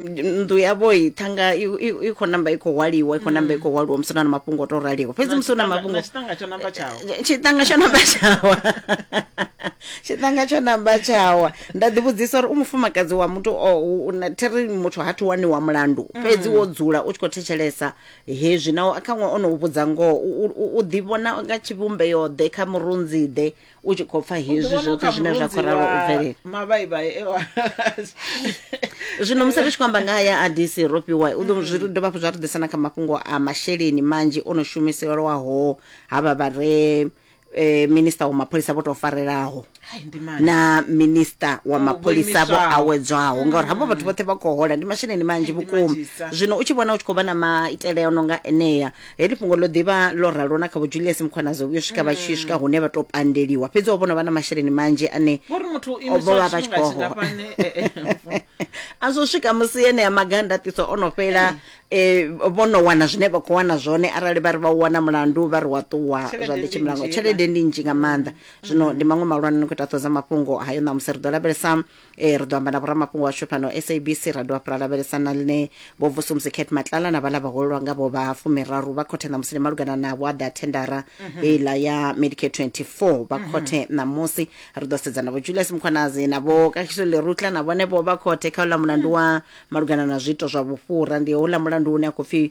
nnḓu yavho i thanga i- i i khou namba i khou hwaliwa i khou namba i khou hwaliwa musi hu na na mafhungo o to raliho fhedzi musi hu na mafhungo tshiṱanga tsho namba tshawo tshiṱanga tsho namba tshawa tshiṱanga tsho namba tshawa nda ḓi vhudzisa uri u mufumakadzi wa muthu o u- u na- thiri muthu ha thi wani wa mulandu fhedzi wo dzula u tshi khou thetshelesa hezwi naho khaṅwe o no u vhudza ngoho u- u- u- u ḓi vhona nga tshivhumbeyo ḓe kha murunzi ḓe u tshi khou pfa hezwi zwoṱhe zwine zwa khou ralo u bvelela mavhaibai ewa zwino musi ri tshi khou amba nga haya a dc ro fhiwa u ḓo zwi dovha hafhu zwa ri ḓisa na kha mafhungo a masheleni manzhi o no shumiselwaho havha vha re eh, minista wa mapholisa vho tou farelaho Hai, ndi mani na minista wa mapholisa vho vhoimiswaho. awedzwaho ngauri havho vhathu vhoṱhe vha khou hola ndi masheleni manzhi Ndi vhukuma manzhisa. zwino u tshi vhona u tshi khou vha na maitele a no nga enea heḽi fhungo ḽo ḓivha ḽo ralo na kha vho julius mukhwanazo vhuyo swika vha tshi swika hune vha tou pandeliwa fhedzi o vhona vha na masheleni manzhi ane vhori muthu o vho vha vha tshi khou hola imiswaingafhani a zwo swika musi enea maganda ṱiso o no fhela um vho no wana zwine vha khou wana zwone arali vha ri vha u wana mulandu vha ri wa ṱuwa zwa Tshelede ḓi ndi tshimulango nnzhi, tshelede ndi nnzhi nga maanḓa zwino ndi maṅwe malwana ni khou ita ṱhoho dza mafhungo hayo ṋamusi ri ḓo lavhelesa e ri ḓo amba na vhoramafhungo washu fhano sabc ra dovha fhula lavhelesa na ḽine vho vusumusi cat matlala na vhala vhahulelwa nga vho vha fumiraru vha khothe ṋamusi ndi malugana na vhuaḓa thendara heiḽa ya medicare 24 vha khothe ṋamusi ri ḓo sedza na vho julius mukhwanazi na vho kahiso lerutla na vhone vho vha khothe kha uḽa mulandu wa malugana na zwiito zwa vhufhura ndi houḽa mulandu une a khou pfi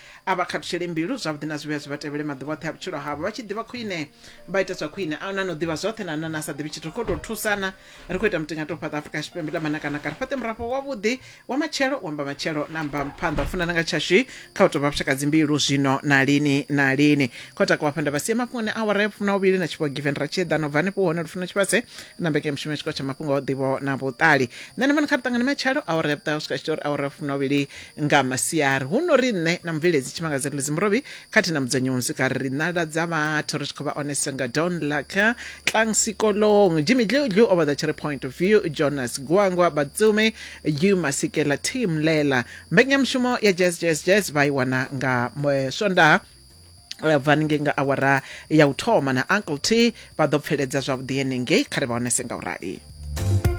A vha khathutshele mbilu zwavhuḓi na zwivhuya zwi vha tevhele maḓuvha oṱhe a vhutshilo havho, vha tshi ḓivha khwine vha ita zwa khwine. A hu na ane o ḓivha zwoṱhe na ane a sa ḓivhi tshithu. Ri khou tou thusana, ri khou ita mutingaṱe u fhaṱa Afrika Tshipembe ḽa manakanaka, ri fhaṱe murafho wavhuḓi wa matshelo, wa mbamatshelo na mbaphanḓa. U funana nga tshashu kha u tou vha vhushakadzimbilo zwino na lini na lini. Khou takuwa hafha nda vha sia mafhungoni a awara ya vhufumi na vhuvhili na tshifhiwa Given Ratshiedana u bva hanefho hone Lufuno Tshivhase na mbekanyamushumo ya tshikolo tsha mafhungo a u ḓivho na vhuṱali. Nṋe na vhone kha ri ṱangane matshelo awara ya vhuṱahe u swika tshi tou ri awara ya vhufumi na vhuvhili nga masiari huno ri nṋe na mubveledzi tshimangadza ḽidzi murovhi khathihi na mudzudzanyi wa muzika ri nala dza vhathu ri tshi khou vha onesa nga don laka tlang sikolong jimmy dludlu o vhaḓa tshi ri point of view jonas gwangwa batsume yu masikela team lela mbekanyamushumo ya jazz jazz jazz vha i wana nga eh, swondaha eh, bva haningei nga awara ya u thoma na uncle t vha ḓo pfeledza zwavhuḓi henengei kha ri vha onese nga u rali